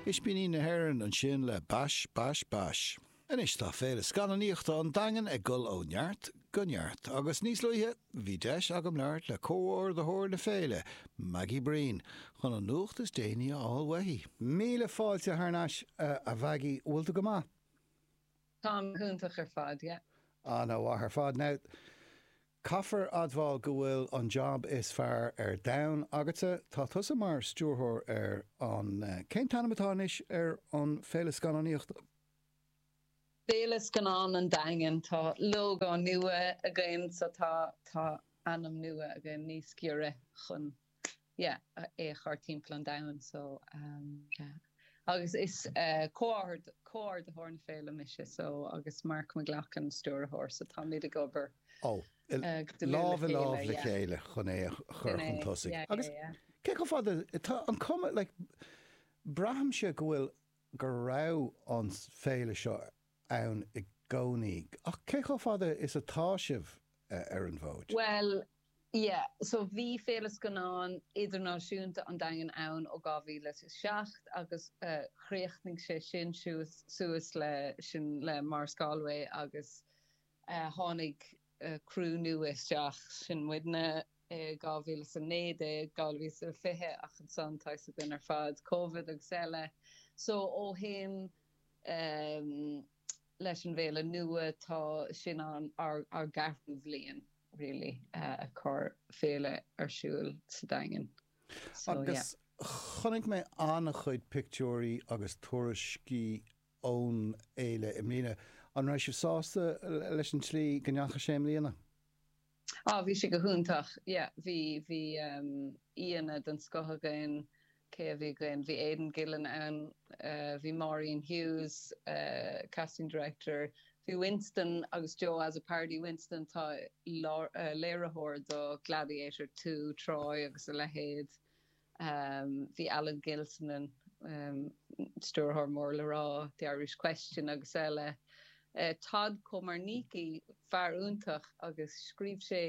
Ispíní na hÉireann ansin le Bash Bash Bash. Anois tá Féile Scannánaíochta an Daingin ag dul ó neart go neart agus níos luaithe bhí deis agam labhairt le comhordaitheoir na féile, Maggie Breen, chun an nuacht is déanaí a fháil uaithi. Míle fáilte thar n-ais, a Mhaggie, bhfuil tú go maith? Táim iontach ar fad, yeah. Ana mhaith ar fad. Now, Caithfear admháil go bhfuil an jab is fearr ar domhan agatsa, tá tusa mar stiúrthóir ar an, cén t-ainm atá anois ar an féile scannánaíochta? Féile Scannán an Daingin, tá lógó nua againn so tá, tá ainm nua againn níos giorra chun. yeah é a chur timpeall an domhain so yeah agus is comhordaitheoir na féile mise so agus Mark McLoughlin an stiúrthóir so táimid ag obair lámh i lámh le chéile chun é a chur chun tosaigh agus cé chomh fada tá an cuma like braithimse go bhfuil go raibh an féile seo ann i gcónaí. Ach cé chomh fada is atá sibh ar an bhfód? Bhuel, yeah. So bhí Féile Scannán Idirnáisiúnta an Daingin ann ó 2007 agus chríochnaigh sé sin suas le Maurice Galway agus tháinig criú nua isteach, sin muidne, i 2019, 2020 ach ansan, tá a fhios againn ar fad Covid agus eile. So ó shin, leis an bhféile nua tá sin an ár gceathrú bhliain really ag cur féile ar siúil sa Daingean so yeah. Chonaic mé an-chuid pictiúirí agus tuairiscí ón fhéile i mbliana. An raibh sibh sásta leis an tslí go ndeachaigh sé i mbliana? Ah, bhí sé go hiontach. Yeah, bhí, bhí aíonna den scoth againn. Cé a bhí againn? Bhí Aidan Gillen ann, bhí Maureen Hughes, casting director, bhí Winston agus Joe Azzopardi, Winston tá léiritheoir do Gladiator Two, Troy agus a leithéid. Bhí Alan Gilsenan, an stiúrthóir mór le rá The Irish Question agus eile, Todd Komarnicki, fear iontach agus scríobh sé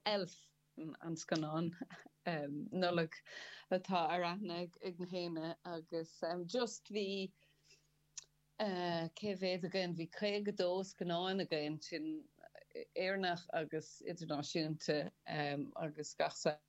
Elf, an scannán Nollag atá ar aithne ag gach éinne, agus just bhí, cé mhéad againn, bhí 52 scannán againn, sin Éireannach agus idirnáisiúnta agus gach saghas.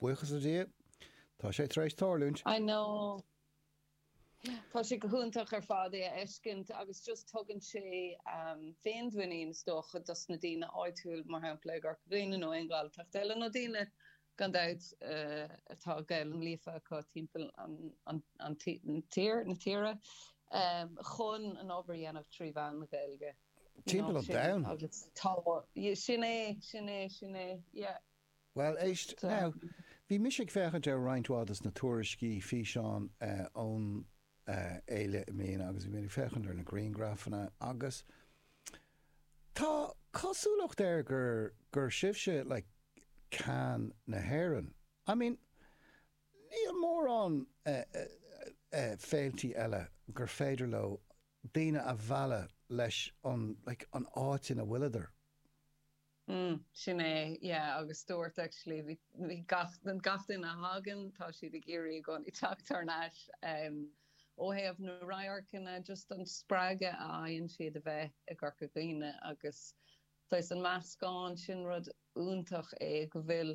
Buíochas le Dia, tá sé tar éis tarlúint. I know. Tá sé go hiontach ar fad a fheiscint agus just tugann sé féinmhuinín is dócha dos na daoine áitiúil, mar shampla i gCorca Dhuibhne nó aon Ghaeltacht eile nó daoine gan dabht atá Gaelainn líofa acu timpeall an tír, na tíre, chun an obair a dhéanamh trí mheán na Gaeilge, you know, sin agus tá, sin é, sin é, sin é, yeah. Bhuel, éist, now, bhí mise ag féachaint ar roinnt mhaith des na tuairiscí, físeáin ón fhéile i mbliana agus bhí mé ag féachaint ar na griangrafanna agus tá cosúlacht air gur, gur sibhse like ceann na hÉireann. I mean, níl mórán féiltí eile gur féidir leo daoine a mhealladh leis an, like, an áit ina bhfuileadar. mm, sin é, yeah agus dúirt actually bhí gach, gach duine a thagann tá siad ag iarraidh i gcónaí teacht thar n-ais em ó thaobh na radharcanna just an spreagadh a fhaigheann siad a bheith i gCorca Dhuibhne agus saghas an meascán sin rud iontach é go bhfuil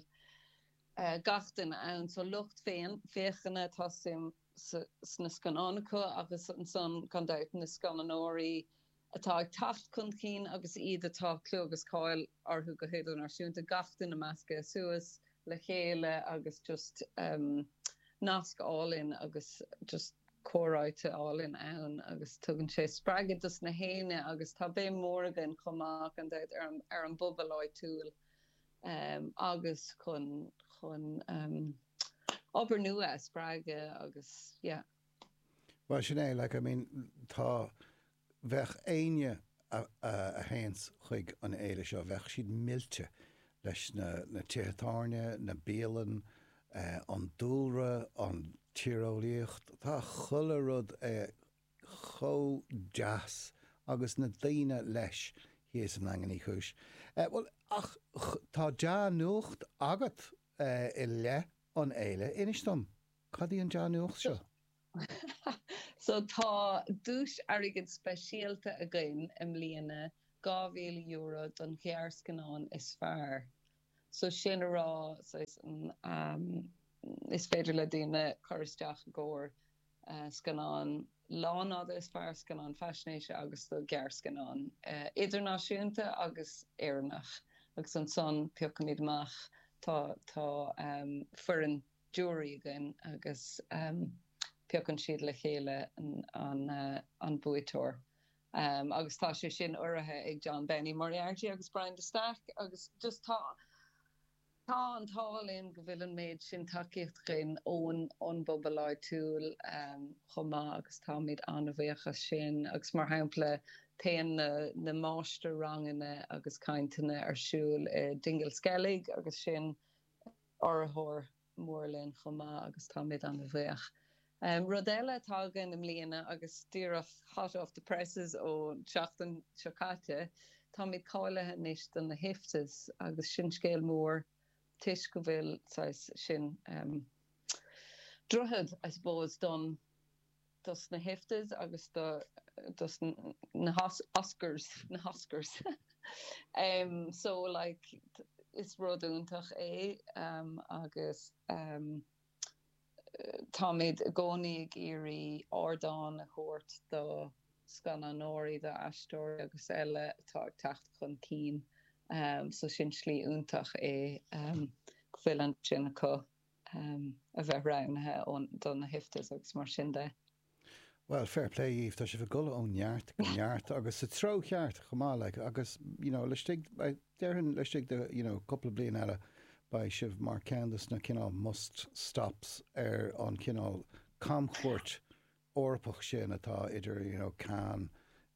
eh gach duine ann so lucht féachana tá suim sna scannáin acu agus ansan gan dabht na scannánóirí atá ag teacht chun cinn agus iad atá clú agus cáil orthu go hidirnáisiúnta, gach duine measctha suas le chéile agus just nasc álainn agus just comhráite álainn ann agus tugann sé spreagadh dos na haoinne agus tá béim mhór againn chomh maith gan dabht ar an bpobal áitiúil agus chun chun obair nua a spreagadh agus yeah. Bhuel, sin é, like, I mean, tá, bheadh éinne a théanns chuig an fhéile seo, bheadh siad millte leis na tithe tábhairne, na bialann, an dúlra, an tíreolaíocht, tá chuile rud chomh deas agus na daoine leis thíos i nDaingean Uí Chúis. Bhuel, ach tá dea-nuacht agat i leith an fhéile, inis dom. Cad í an dea-nuacht seo? Sea, tá duais airgid speisialta againn i mbliana, €2,000 don ghearrscannán is fearr. So, sin a rá, saghas, is féidir le daoine cur isteach i gcomhair scannán lánfhada is fearr, scannán faisnéise agus do ghearrscannán idirnáisiúnta agus Éireannach. Agus ansan, piocaimid amach, tá, tá foireann. giúiré againn agus piocann siad le chéile an buaiteoir agus tá sé sin urraithe ag John Benny Moriarty agus Brian de Staic agus just tá tá an t-ádh linn go bhfuil an méid sin tacaíocht againn ón ón bpobal áitiúil chomh maith agus táimid an-bhuíoch as sin agus mar shampla téann na na máistir-ranganna agus cainteanna ar siúl i Dingle Skellig agus sin urraitheoir mór linn chomh maith agus táimid an-bhuíoch. Rud eile atá againn i mbliana agus díreach hot off the presses ón tseachtain seo caite, táimid cáilithe anois do na hIFTAs agus sin scéal mór toisc go bhfuil, saghas, sin droichead, I suppose, don. dos na hIFTAs agus dos na hOscars na hOscars em so like is rud iontach é em agus em táimid i gcónaí ag iarraidh ardán a thabhairt do scannánóirí, do aisteoirí agus eile atá ag teacht chun cinn so sin slí iontach é em go bhfuil ansin acu. a bheith roghnaithe do na hIFTAs agus mar sin de. Bhuel, fair play dhíbh, tá sibh ag dul ó neart go neart agus sa treo cheart chomh maith, like, agus, you know, laistigh, déarfainn laistigh de, you know, cúpla bliain eile, beidh sibh mar cheann dos na cineál must-stops ar an chineál camchuairt Eorpach sin atá idir you know Cannes,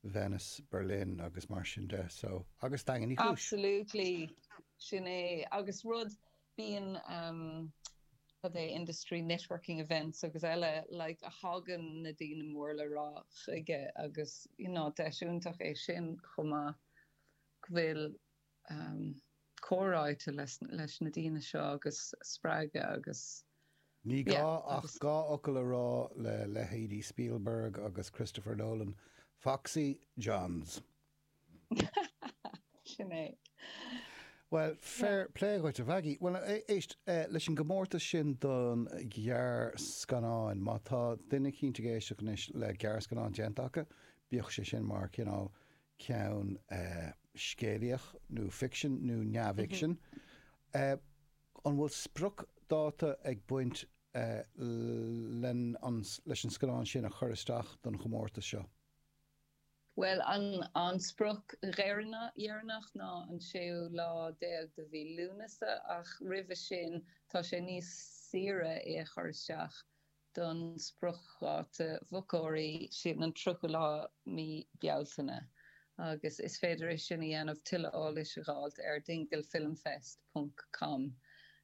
Venice, Berlin agus mar sin de so agus Daingean Uí Chúis. Absolutely, sin é agus rud, bíonn ehm cad é industry networking events agus eile like a thagann na daoine mór le rá chuige agus you know deis iontach é sin chomh maith go bhfuil comhráite leis na daoine seo agus spreagadh agus. Ní gá ach dhá fhocal a rá le leithéidí Spielberg agus Christopher Nolan, Foxy John's! Sin é. Bhuel, fair play dhuit, a Mhaggie. Bhuel, éist, leis an gcomórtas sin don ghearrscannáin, má tá duine eicínt ag éisteacht anois le gearrscannán déanta acu, bíodh sé sin mar chineál ceann scéalaíocht nó ficsean nó neamhfhicsean. An bhfuil spriocdháta ag baint leis an scannán sin a chur isteach don chomórtas seo? Bhuel, an sprioc dheireanach ná an séú lá déag de mhí Lúnasa ach roimhe sin tá sé níos saoire é a chur isteach. don spriocdháta mochóirí sin, an 30ú lá mí Bealtaine, agus is féidir é sin a dhéanamh, tuilleadh eolais a dh'fháilt, ar dinglefilmfest ponc com.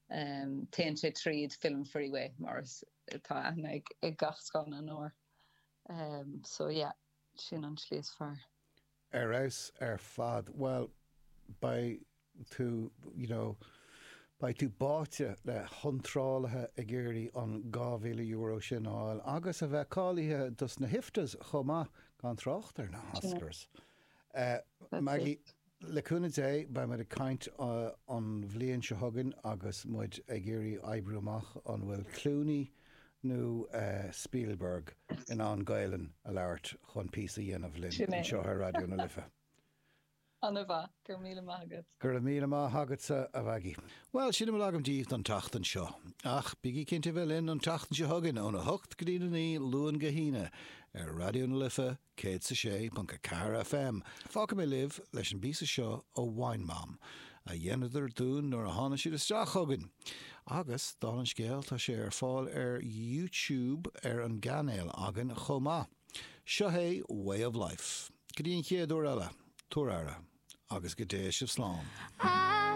Téann sé tríd Film Freeway, mar is atá aithne ag gach scannánóir, so yeah, sin an slí is fearr. Ar fheabhas ar fad. Bhuel, beidh tú, you know, beidh tú báite le hiontrálaithe ag iarraidh an €2,000 sin a fháil agus a bheith cáilithe dos na hIFTAs chomh maith, gan trácht ar na hOscars. Maggie, le cúnamh Dé, beidh muid ag caint an bhliain seo chugainn agus muid ag iarraidh oibriú amach an bhfuil Clooney, nó Spielberg in ann Gaelainn a labhairt chun píosa a dhéanamh linn anseo ar Raidió na Life. An-mhaith, go raibh míle maith agat. Go raibh míle maith agatsa, a Mhaggie. Bhuel, sin a bhfuil agam díbh don tseachtain seo. Ach bígí cinnte a bheith linn an tseachtain seo chugainn, óna hocht go dtí a naoi, Luan go hAoine, ar Raidió na Life 106.4 FM. Fágfaidh mé libh leis an bpíosa seo ó Wine Mom, a dhéanadar dúinn nuair a tháinig siad isteach chugainn! Agus, dála an scéil, tá sé ar fáil ar YouTube ar an gcainéal againn chomh maith. Seo é Way of Life. Go dtí an chéad uair eile, tabhair aire, agus go dté sibh slán.